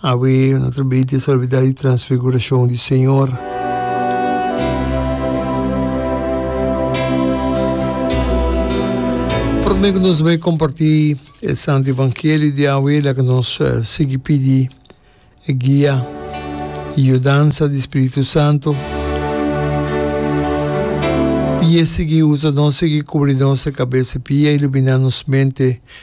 Awe no ta bay te salvidad di transfiguracion di Señor. Prome cu nos bay comparti e Santo Evangelio di awe, laga nos sigui pidi e guia y yudansa di Spiritu Santo. Pia sigui usa nos, sigui cubri nos e cabeza, pia ilumina nos mente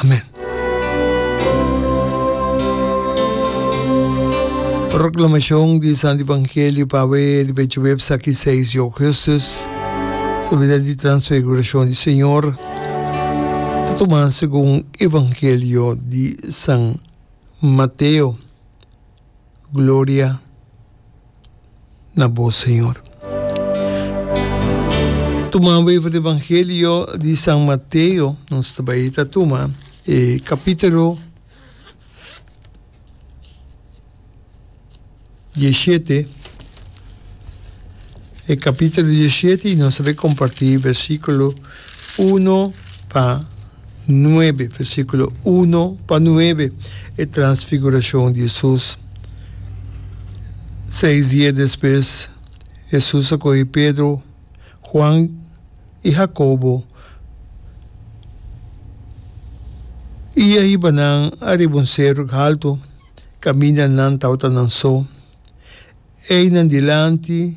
Amen. Proclamacion di Santo Evangelio pa awe riba e jueves aki 6 di augustus, Solemnidad di Transfiguracion di Señor, ta tuma segun Evangelio di San Mateo. Gloria na bo Señor. Tuma bai for e Evangelio di San Mateo, nos ta bai ta tuma e capitulo diecisiete, e capitulo diecisiete y nos ta bai comparti versiculo Uno pa nuebe, versículo uno pa nuebe, e transfiguracion di Jesus. Seis dia despues, Jesus a coge Pedro, Juan i Jacobo i a hiba nan ariba un cerro halto, caminda nan tabata nan so. Eynan dilanti.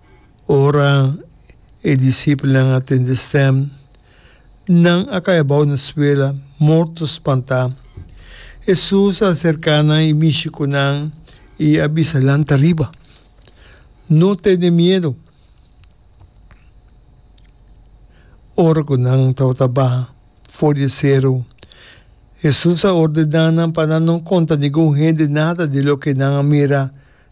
Ora e disipelnan a tende stem, nan a kai abou na suela, morto spantá. Hesus a aserká nan i mishi ku nan i a bisa, Lanta riba! No tene miedu! Ora ku nan tabata baha for di e seru, Hesus a ordená nan pa nan no konta ningun hende nada di loke nan a mira.